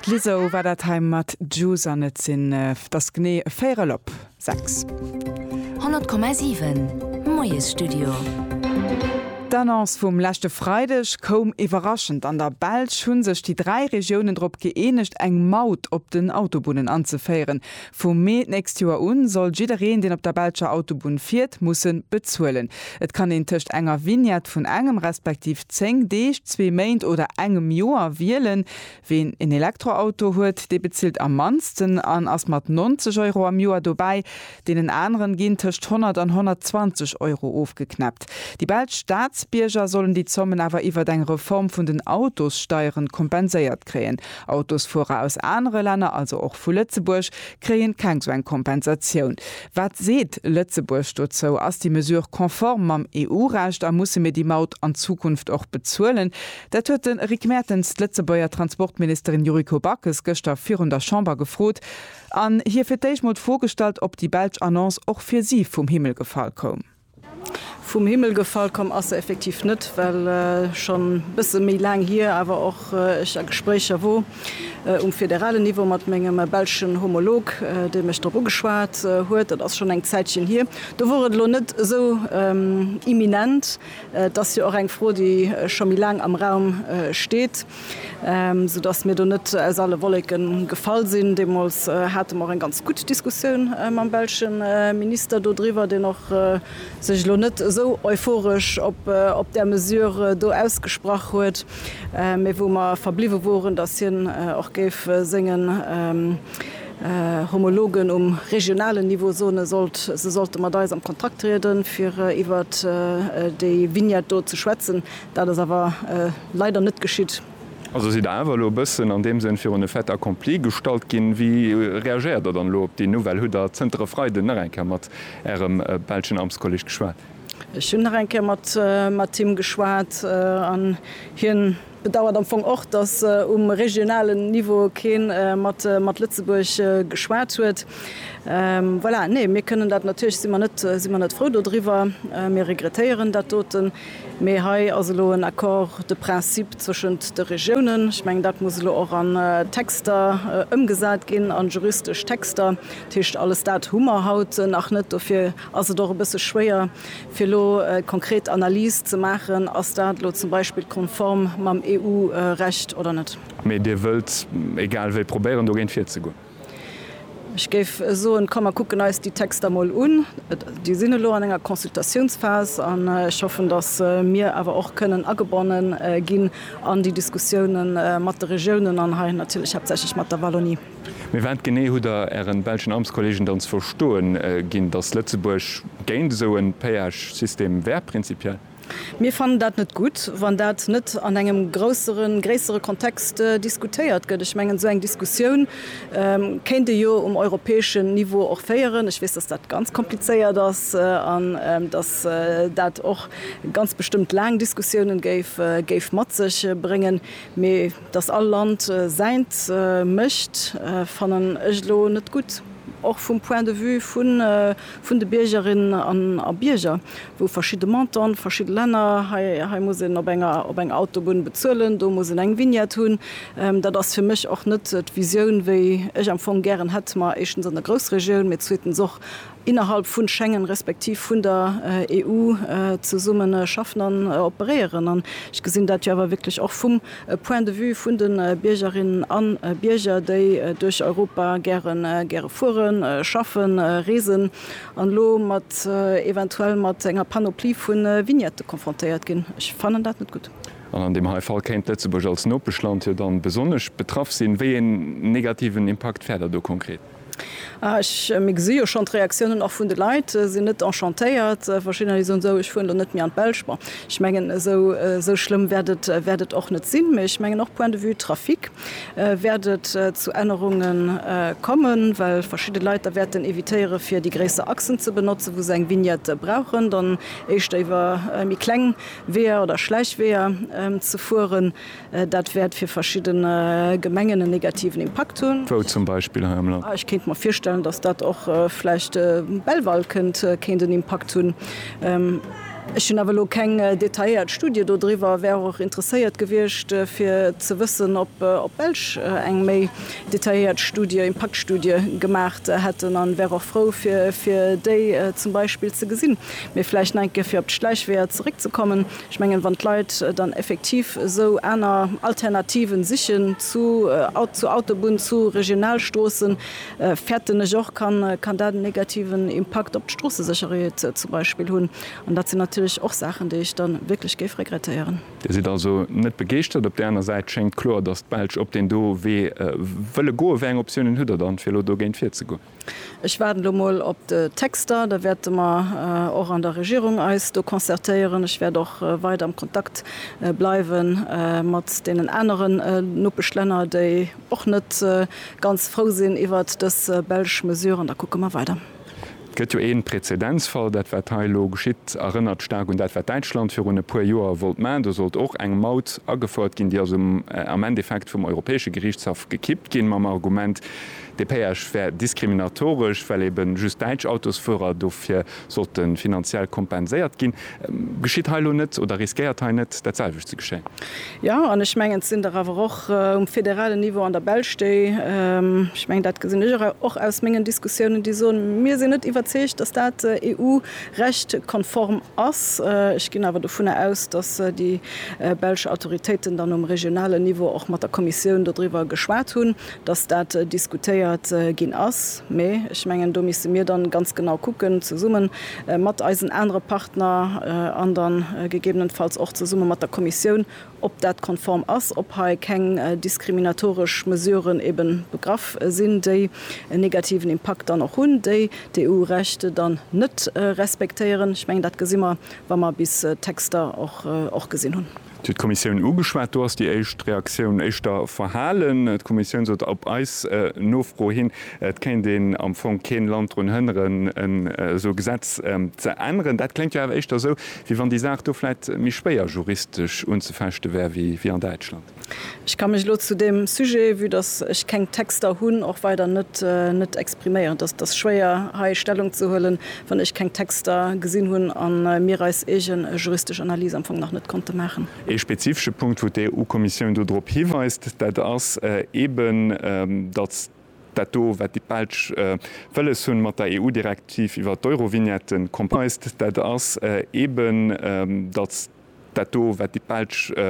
D'Lizzo war dat hei mat Juice an et sinn, et ass genee véierel op sechs. 100,7 Moiesstudio. D'Annonce vum leschte Freideg koum iwwerraschend. An der Belsch hu sech déi dräi Regiounen drop gëeenegt, eng Maut op den Autobunnen anzeféieren. Vum Mee d'nächst Joer u soll jiddereen, deen op der belscher Autobunn fiert, musse bezuelen. Et kann een tëscht enger Vignette vun engem respektiv 10 Deeg, zwee Méint oder engem Joer wielen. Ween en Elektroauto huet, dee bezilt am mannsten an ass mat 90 Euro am Joer dobäi. Deenen aneren ginn tëscht 100 an 120 Euro ofgeknäppt. Déi belsch Staatsbierger sollen déi Zommen awer iwwert eng Reform vun den Autossteieren kompenséiert kréien. Autosfuerer aus anere Länner, also och vu Lëtzebuerg, kréien keng sou eng Kompensatioun. Wat seet Lëtzebuerg dozou? Ass déi Mesure konform mam EU-Recht a musse mir déi Maut an Zukunft och bezuelen? Dat huet de Rick Mertens d'Lëtzebuerger Transportministerin Yuriko Backes gëschter virun der Chamber gefrot an hir fir d'éischt mol d'Fro gestallt, ob déi belsch Annonce och fir si vum Himmel gefall koum. Vum Himmel gefall komm ass se effektiv net, well schonn e bësse méi laang hier awer och ech a Gespréicher wor um federalen Niveau mat mengem belschen Homolog, dee mech drop ugeschwat huet. Dat ass schonn eng Zäitchen hier. Do wor et elo net esou imminent. Et ass jo och eng Fro, déi scho méi laang am Raum steet. sou dass mir do net aus alle Wolleke gefall sinn. Deemools hate mer och eng ganz gutt Diskussioun mam belsche Minister do driwwer, deen och sech elo net esou euphoresch op där Mesure do ausgesprach huet, mee wou mer verbliwwe woren, dass hien och géif sengen Homologen um regionalen Niveau soene sollt, se sollte mat eis am Kontakt trieden, fir iwwert déi Vignette do ze schwätzen. Dat ass awer leider net geschitt. Also sidd Der awer elo e bëssen an deem Sënn virun e Fait accompli gestallt ginn. Wéi reagéiert Der dann elo op déi Nouvelle? Hutt Der zënter e Freiden nach eng Kéier mat Ärem belschen Amtskolleg geschwat? Ech hunn nach eng Kéier mat him geschwat an hie bedauert am Fong och, datt um regionalen Niveau kee mat Lëtzebuerg geschwat huet. Voilà, nee, mir kënnen dat natierlech, si mer net frou dodriwwer, mir regrettéieren dat doten. Mee hei ass elo en Accord de principe zwëschent de Regiounen. Ech mengen, dat muss elo och an Texter ëmgesat ginn, an juristesch Texter. Dat heescht, alles dat hu mer haut nach net. Dofir ass et och e bësse schwéier, fir elo eng konkret Analys ze maachen, Ass dat elo zum Beispill konform mam EU-Recht oder net? Mee Dir wëllt egal wéi probéieren, dogéint virzegoen? Ech géif soen, komm mer kucken eis déi Texter mol un. Déi sinn elo an enger Consultatiounsphase an ech hoffen, datt mir awer och kënnen agebonne ginn an déi Diskussioune mat de Regiounen an hei natierlech haaptsächlech mat der Wallonie. Mee wat genee hutt Der Ären belschen Amtskollegen dann ze verstoe ginn, datt Lëtzebuerg géint esou e Péage-System wär prinzipiell? Mir fannen dat net gutt, wann dat net an engem grousseren, gréissere Kontext diskutéiert gëtt. Ech mengen, esou eng Diskussioun kéint ee jo um europäeschen Niveau och féieren. Ech weess, dass dat ganz komplizéiert ass an dass dat och ganz bestëmmt laang Diskussiounen géif mat sech bréngen. Mee dass all Land säint mécht, fannen ech elo net gutt, och vum Point de vue vu vun de Biergerinnen a Bierger, wou verschidde Montanten, verschidde Länner, hei, hei muss een op enger, op enger Autobunn bezuelen, do muss een eng Vignette hunn, dat ass fir mech och net d'Visioun, wéi ech am Fong gären hätt mer éischtens an der Groussregioun, mee zweetens och innerhalb vun Schengen respektiv vun der EU zesummen schaffen an operéieren. An ech gesinn dat jo awer wierklech och vum, E Point de vue vun de Biergerinnen a Bierger, déi duerch Europa gäre fueren, schaffen, reesen an elo eventuell mat enger Panoplie vu Vignette konfrontéiert ginn. Ech fannen dat net gutt. An an deem hei Fall kéint Lëtzebuerg als Nopeschland jo dann besonnesch betraff sinn. Wéi een negativen Impakt fäert Der do konkret? Mir gesi jo schonn d'Reaktiounen och vun de Leit sinn net enchantéiert. Verschiddener, déi soen, sou ech fueren elo net méi an d'Belsch. Bon, ech mengen esou esou schlëmm wäert et wäert et och net sinn. Mee ech mengen och point de vue Trafic wäert et zu Ännerunge kommen, well verschidde Leit da wäerten evitéiere fir déi gréisser Achsen ze benotzen, wou se eng Vignette brauchen, dann éischter iwwer méi kleng Weeër oder Schläichweeër ze fueren. Dat wäert fir verschidden Gemengen en negativen Impakt hunn. Wou zum Beispill hei am Land? Ech kéint mer virstellen, datt dat och vläicht Belval kënnt kéint en Impakt hunn. Ech hunn awer elo keng detailléiert Studie do driwwer, wär och interesséiert gewiescht fir ze wëssen, ob d'Belsch eng méi detailléiert Studie, Impaktstudie gemaach hätten an wär och frou fir déi zum Beispill ze gesinn. Mee vläicht nach eng Kéier fir op d'Schläichweeër zeréckzekommen. Ech mengen, wann d'Leit dann effektiv esou aner Alternativen sichen zu Autobunn, zu Regionalstroossen, fäerten ech och, kann dat en negativen Impakt op d'Stroossesécherheet zum Beispill hunn. An dat sinn natierlech och Saachen, déi ech da wierklech géif regrettéieren. Dir sidd also net begeeschtert. Op där aner Säit schéngt kloer, dass d'Belsch op deen do Wee wëlle goen. Wéi eng Optiounen hutt Der dann, fir elo dogéint virzegoen? Ech waarden elo mol op de Texter. Da wäerte mer och an der Regierung eis do concertéieren. Ech wäert och weider am Kontakt bleiwe mat deenen aneren Nopeschlänner, déi och net ganz frou sinn iwwert dës belsch Mesure. An da kucke mer weider. Et gëtt jo ee Prezedenzfall. Dat, wat hei elo geschitt, erënnert staark un dat, wat Däitschland virun e puer Joer wollt maachen. Do sollt och eng Maut agefouert ginn. Déi ass am Endeffekt vum Europäesche Geriichtshaff gekippt ginn mam Argument, Dee Péage wär diskriminatoresch, well ebe just däitsch Autosfuerer dofir sollte finanziell kompenséiert ginn. Geschitt hei elo net oder riskéiert hei net dat selwecht ze geschéien? Jo, an ech mengen, et sinn der awer och um federalen Niveau an der Belsch, déi, ech mengen, dat gesinn ech och aus mengen Diskussiounen, déi soen, mir sinn net iwwerzeegt, dass dat EU-Recht-konform ass. Ech ginn awer dovunner aus, dass déi belsch Autoritéiten dann um regionalen Niveau och mat der Kommissioun dodriwwer geschwat hunn. dass dat diskutéiert ginn ass, mä ech mengen, do misste mir dann ganz genau kucken, zesumme mat eisen anere Partner an dann gegebenenfalls och zesumme mat der Kommissioun, ob dat konform ass, ob hei keng diskriminatoresch Mesuren ebe begraff sinn, déi en negativen Impakt dann och hunn, déi d'EU-Recht dann net respektéieren. Ech mengen, dat gesi mer, wa mer bis d'Texter och gesinn hunn. Et huet d'Kommissioun ugeschwat. Do ass déi éischt Reaktioun éischter verhalen. D'Kommissioun sot op eis Nofro hin, et kéint een am Fong keen Land drun hënneren, en esou Gesetz ze änneren. Dat kléngt jo awer éischter esou, wéi wann déi Saach do vläit méi schwéier juristesch unzefechte wär wéi an Däitschland. Ech ka mech elo zu deem Sujet, vue dass ech keng Texter hunn, och weider net expriméieren. Dat ass schwéier hei Stellung ze huelen. wann ech keng Texter gesinn hunn a mir eis eege juristesch Analys am Fong nach net konnte maachen. Ee spezifesche Punkt, wou d'EU-Kommissioun do drop hiweist, dat ass eeben, datt dat do, wat déi Belsch wëlles hunn, mat der EU-Direktiv iwwert d'Eurovignette complied. Dat ass eeben, datt dat do, wat déi Belsch.